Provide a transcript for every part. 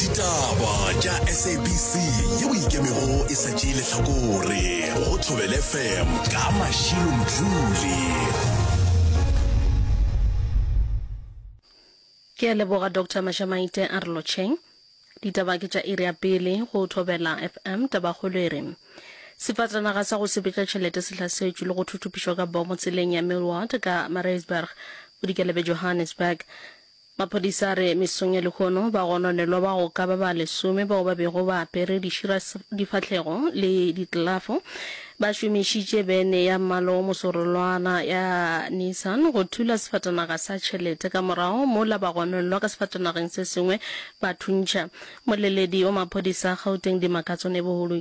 ditaba tša sabc yeo ikemego e sa tšee lehlakore go thobele fm ka mašilo mdluli ke a leboga dr mashamaite a re lotšheng ditaba ke tša iri ya pele go thobela fm tabakgolo e re sefatanaga sa go sepetša tšhelete se hlasetšwe le go thuthupišwa ka bomo tseleng ya millward ka maritzburg bodikela bja johannesburg Maphodisa a re mesong ya lehono bagononelwa ba go ka ba ba lesome bao ba bego ba apere dišira difahlego le ditlelafo ba šomišitše bene ya mmala o mosorolwana ya Nissan go thula sefatanaga sa tšhelete ka morago mola bagononelwa ka sefatanageng se sengwe ba thuntšha. Moleledi wa maphodisa a Gauteng Dimakatso Neboholoe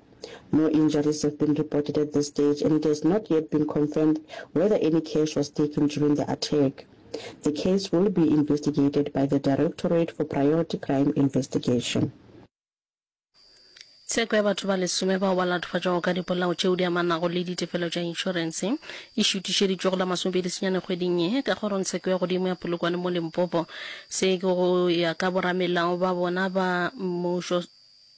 No injuries have been reported at this stage and it has not yet been confirmed whether any cash was taken during the attack. The case will be investigated by the Directorate for Priority Crime Investigation. Tsheko ya batho ba lesome bao ba latofatšwago ka dipolao tšeo di amanago le ditefelo tša inšorense e šutišeditšwe go la masomepedi senyane kgweding ye ka kgorongtsheko ya godimo ya Polokwane mo Limpopo. Se ke go ya ka boramelao ba bona ba mmušo.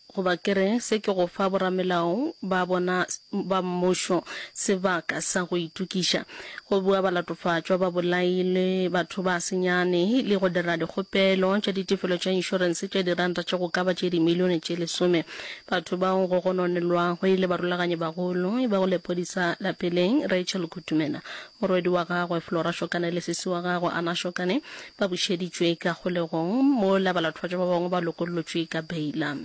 Goba ke re, se ke go fa boramelao ba bona ba mmušo sebaka sa go itokiša, go bua balatofatšwa, babolai le batho ba senyane, le go dira dikgopelo tša ditefelo tša inšorense tša diranta tše go ka ba tše dimilione tše lesome. Batho bao go gononelwago e le barulaganyi-bagolo ba go lepodisa lapeleng, Rachel Kutumela, Morwedi wa gagwe Flora Shokane le sesi wa gagwe Anna Shokane ba bušeditšwe ka kgolegong, mola balathwatšwa ba bangwe ba lokollotšwe ka beila.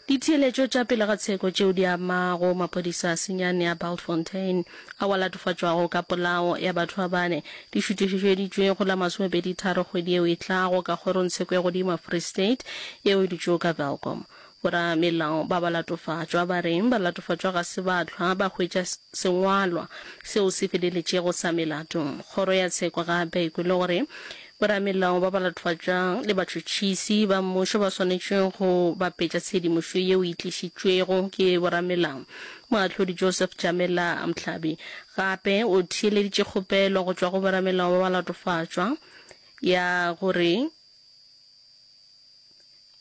Ditheeletšo tša pele ga tsheko tšeo di amago maphodisa a senyane a Bultfontein ao a latofatšwago ka polao ya batho ba bane di šuthišetšwe go la masomepedi tharo kgwedi yeo e tlago ka kgorongtsheko ya godimo ya Free State yeo e dutšego ka Welkom. Boramelao ba balatofatšwa ba re balatofatšwa ga se ba hlwa ba hwetša sengwalwa seo se feleletšego sa melato. Kgoro ya tsheko gape e kwele gore boramelao ba balatofatšwa le batšhotšhisi ba mmušo ba swanetše go bapetša tshedimošo yeo e tlišitšwego ke boramelao. Moahlodi Joseph Jamela Mhlabi gape o theeleditše kgopelo go tšwa go boramelao ba balatofatšwa ya gore,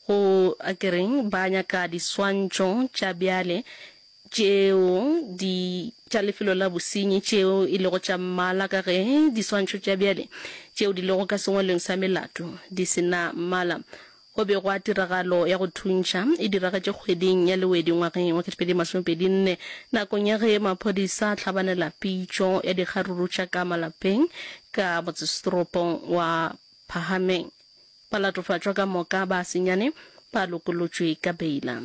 Go, a ke reng, ba nyaka diswantšho tša bjale tšeo di tša lefelo la bosenyi tšeo e lego tša mmala, ka ge diswantšho tša bjale tšeo di lego ka sengwalweng sa melato di se na mmala. Go be gwa tiragalo ya go thuntšha e diragetše kgweding ya Lewedi ngwageng wa 2024 nakong ya ge maphodisa a hlabanela pitšo ya dikgaruru tša ka malapeng ka motsesetoropong wa Phahameng. Ba latofatšwa ka moka ba senyane ba lokolotšwe ka beila.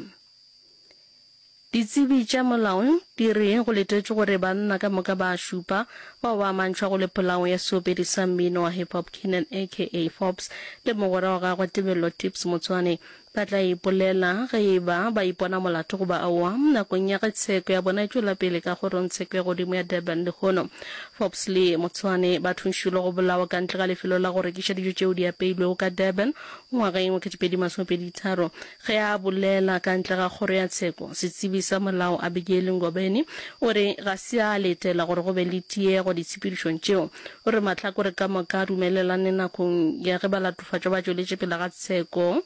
Ditsebi tša molao di re go letetšwe gore banna ka moka ba šupa bao ba amantšhwa go le polao ya seopedi sa mmino wa hip-hop Keenan aka Forbes le mogwera wa gagwe Tebello Tips Motsoane Ba tla ipolela ge e ba ba ipona molato goba aowa nakong ya ge tsheko ya bona e tšwela pele ka kgorongtsheko ya godimo ya Durban lehono. Forbes le Motsoane ba thuntšhilwe go bolawa ka ntle ga lefelo la go rekiša dijo tšeo di apeilwego ka Durban ngwageng wa 2023. Ge a bolela ka ntle ga kgoro ya tsheko, setsebi sa molao Abigail Ngobeni o re ga se a letela gore go be le tiego ditshepedišong tšeo. O re mahlakore ka moka a dumelelane nakong ya ge ba Batšweletšofatšo ba tšweletše pele ga tsheko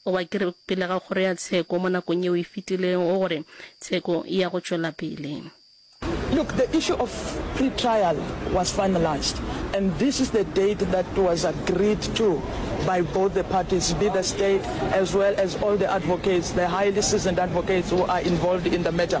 goba ke re pele ga kgoro ya tsheko mo nakong yeo e fetilego gore tsheko e ya go tšwela pele. Look, the issue of pre-trial was finalised and this is the date that was agreed to by both the parties, be the state as well as all the advocates, the highly seasoned advocates who are involved in the matter.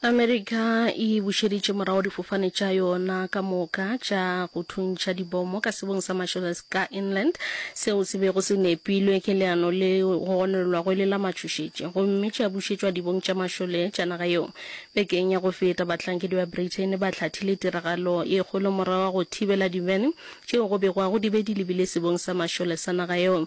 Amerika e bušeditše morago difofane tša yona ka moka tša go thuntšha dibomo ka sebong sa Marshallese ka Inland, seo se bego se nepilwe ke leano le gononelwago e le la matšhošetši, gomme tša bušetšwa dibong tša mašole tša naga yeo. Bekeng ya go feta, bahlankedi ba Britain ba hlathile tiragalo e kgolo morago ga go thibela divene tšeo go begwago di be di lebile sebong sa mašole sa naga yeo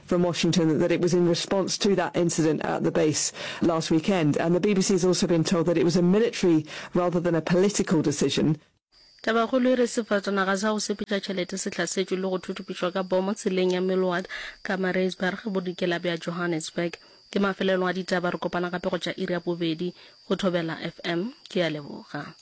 from Washington that it was in response to that incident at the base last weekend. And the BBC has also been told that it was a military rather than a political decision. Tabakgolo e re sefatanaga sa go sepetša tšhelete se hlasetšwe le go thuthupišwa ka bomo tseleng ya Millward, Pietermaritzburg, bodikela bja Johannesburg. Ke mafelelong a ditaba, re kopana gape go tša iri ya bobedi go Thobela FM. Ke a leboga.